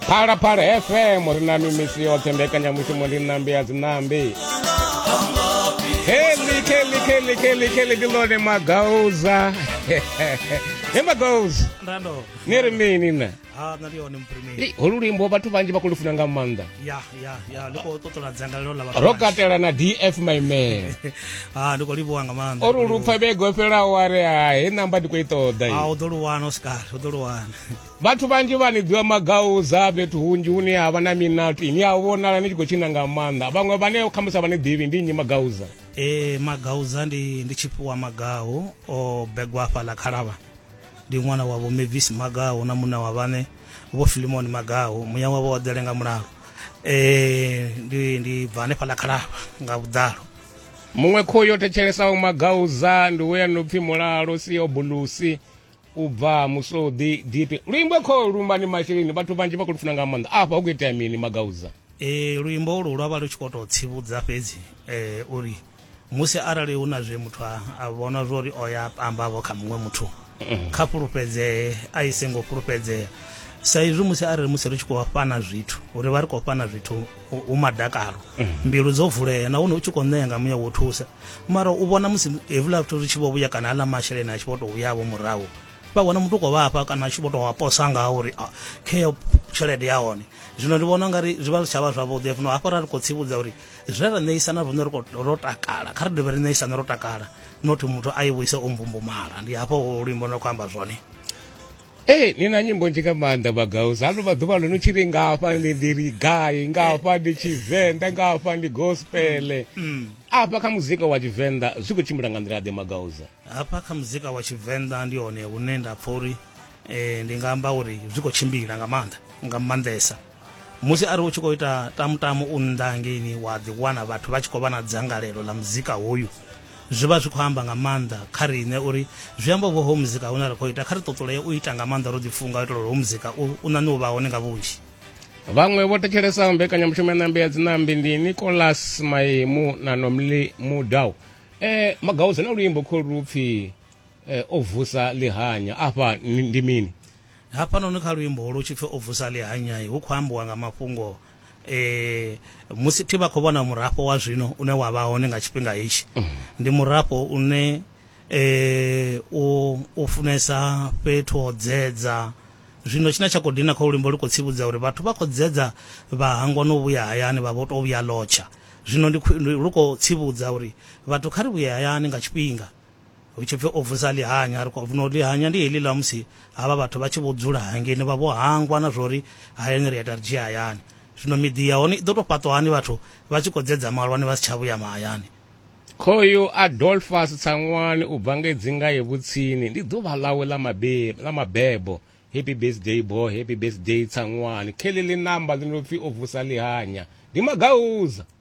phalaphala fm ri na mimisi yoṱhe mbekanyamushumo ndi ṋambi ya dziṋambi Kelly, Kelly, Kelly, Kelly, Kelly, ndi ḽone magauza he magauza ndando ni ri mini na ha nṋe ndi hone muprimeli Ei, holu luimbo vhathu vhanzhi vha khou lufuna nga maanḓa ya ya ya ndi khou ṱoṱola dzangalelo ḽa ro katela na df my man ha ndi khou livhuwa nga maanḓa o ri lupfa vhege o fhelaho a ri hai namba ndi khou i ṱoḓa ha i u ḓo lu wana u sikale u ḓo lu wana Vhathu vhanzhi vha ni ḓivha magauza fhethu hunzhi hune ha vha na minato ini a vhonala ni tshi khou tshina nga maanḓa vhaṅwe vhane khamusi a vha ni ḓivhi ndi nnyi magauza e magauza ndi ndi tshifhiwa magahu o begwa afha ḽa khalavha ndi ṅwana wa vho mavis magahu na muṋe wa vhane vho filimoni magahu muya wavho wa ḓele nga mulalo um ndi ndi bva hanefha ḽa khalavha nga vhuḓalo muṅwe khoyu yo thetshelesa vho magauza ndi we ya no pfi mulalo si obulusi u bva musodi dipi luimbo kho lumba ni masheleni vhathu vhanzhi vha khou lufuna nga maanḓa afha hu khou itea mini magauza e luimbo ulu lwa vha lu tshi khou tou tsivhudza fhedzi um uri musi arali hu na zwe muthu a vhona zwo uri o ya pambavho kha muṅwe muthu mm-hmm. kha fhulufhedzee a i sengo fhulufhedzea sa izwi musi arali musi ri tshi khou fhana zwithu uri vha ri khou fhana zwithu u madakalo mhm. mbilu dzo vulea nahone u tshi khou ṋea nga muya wo thusa mara u vhona musi hevhula vhathu ri tshi vho vhuya kana aḽa masheleni a tshi vho tou vhuyavho murahu vha wana muthu u khou vhafha kana a tshi vho tou aposa ngaho uri ah, kheyo tshelede ya hone zwino ndi vhona ungari zwi vha zwi tsha vha zwavhuḓi fno hafho ra ri khou tsivhudza uri zwe ra ṋeisana rine ro takala kha ri dovhe ri ṋeisana ro takala nothi muthu a i vhuise o mbumbumala ndi hafho luimbo no khou amba zwone Ee, ni na nyimbo nzhi nga maanḓa vhagausi hano maḓuvha ano ni tshi ri nga hafha ndi ndi ri gai nga hafha ndi tshivenḓa nga hafha ndi gospele afha kha muzika wa tshivenḓa zwi khou tshimbila nga nḓila ḓe magausa hafha kha muzika wa tshivenḓa ndi hone hune nda pfha uri eh, ndi nga amba uri zwi khou tshimbila nga maanḓa nga maanḓesa musi ari u tshi khou ita tamutamu u nnḓa hangeini wa ḓi wana vhathu vha tshi khou vha na dzangalelo ḽa muzika hoyu zwi vha zwi khou amba nga maanḓa kha riṋe uri zwi amba uvho ho muzika hune ra khou ita kha ri ṱoṱulee u ita nga maanḓa ro ḓifunga u itela uri ho muzika u ṋaṋe u vha hone nga vhunzhi vhaṅwe vho thetshelesa mbekanyamushumo ya ṋambi ya dzinambi ndi nicolas maimu na nomli mudau um eh, magaudze na luimbo kholu lu pfhi um eh, o vusa ḽihanya afha ndi mini Hafhanoni kha luimbo holu hu tshi pfi o vusa ḽihanyai hu khou ambiwa nga mafhungo e musi thi vha khou vhona murafho wa zwino une wa vha hone nga tshifhinga hetshi. Ndi murafho une e u u funesa fhethu ho dzedza. Zwino tshine tsha khou dina kha luimbo lu khou tsivhudza uri vhathu vha khou dzedza vha hangwa no vhuya hayani vha vho to vhuya ḽotsha. Zwino ndi lu khou tsivhudza uri vhathu kha ri vhuye hayani nga tshifhinga. hu tshi pfi o vusa ḽihanya ri khou no ḽihanya ndi heḽi ḽa musi havha vhathu vha tshi vho dzula hangeni vha vho hangwa na zwori hayani ri a ita ri dzhia hayani zwino miḓi ya hone i ḓo tou fhaṱwa hani vhathu vha tshi khou dzedza malwani vha si tsha vhuya mahayani Khoyu Adolphus Tsangwani u bva ngei Dzingaye Vhutsini ndi ḓuvha ḽawe ḽa mabebo ḽa mabebo Happy birthday boy Happy birthday Tsangwani kheḽi ḽi namba ḽi no pfi o vusa ḽihanya ndi magauza.